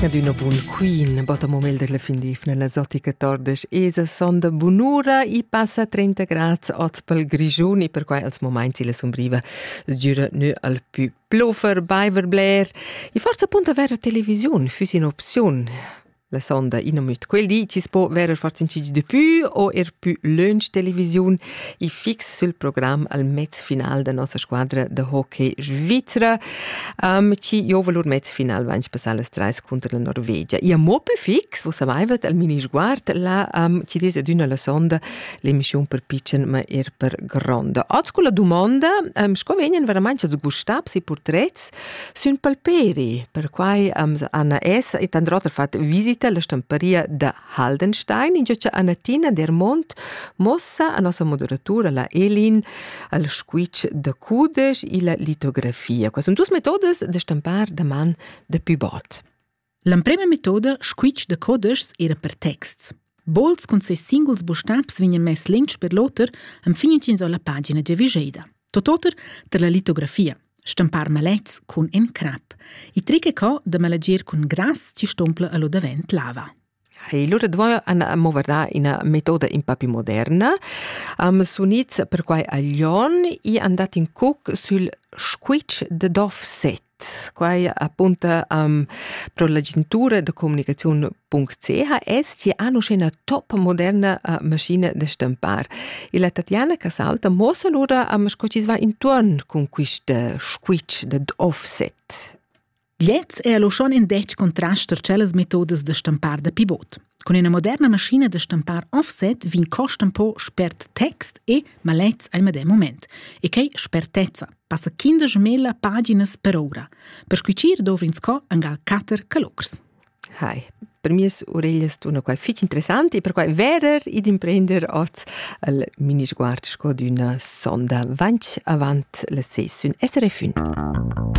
Adüna bun queen, botta momel della fin d'ifna la zotica tordes esa sonda bunura i passa 30 grads oz pel Grischun e perquai als moments la sumbriva sgüra nö al pü plofer, baiver bler. E forsa punt avere televisiun füss in opziun. La sonda innomit quel di chi's po verer far incigi de pü o er pü lönch televisiun i fix sül program al mez final da nossa squadra de hockey Svizra. Um, ci giova lur mez final vain passà las trais contro la Norvegia. I amo pü fix, vos savaivat al mini sguard, la um, ci des adüna la sonda l'emischiun per piccen ma er per gronda. Oz con la domanda, um, sco vegnan veramente sgustabs i portrets Sün palperi, perquai ams Anna es e tant oter fat visita la stamparia da Haldenstein, ingio cha Annatina Dermont mossa a nossa moderatura la Elin al squitsch da cudesch illa litografia. Quai sun duos metodas da stampar da man da pivot. L'emprema metoda, squitsch da codeschs, era per texts. Bols cun ses singuls bustabs vegnan mess lentsch per l'oter enfin ch'ins ho la pagina giavischeida. Tot oter per la litografia, stampar malets cun en crap. I tric è co da malagir cun grass ci stompla a lo davent lava. E allora dovevo movardare una metoda un po' più moderna. Um, sunits perquai a Lyon e andate in cuc sul squitsch de Dovset. quai apunta am pro l'agentura da comunicaziun.ch es chi ha uschena top moderna uh, maschina da stampar. E la Tatjana Casalta mossa lura am sco chi va intuorn cun quista squitsch dad offset. Lez è lo schon in dec contrast tar cellas metodas da stampar da pivot. Con ina moderna maschina da stampar offset vegn costa un po spert text e malets al medem moment. E quei spertezza passa quinda gemella paginas per ora. Per squicir dovrins co angal cater calocrs. Hi. Per mi oreglias tuna qua fitg interessanti, per quai verer ed imprender oz al mini-sguard sco d'una sonda vanch avant la sessiun SRF 1.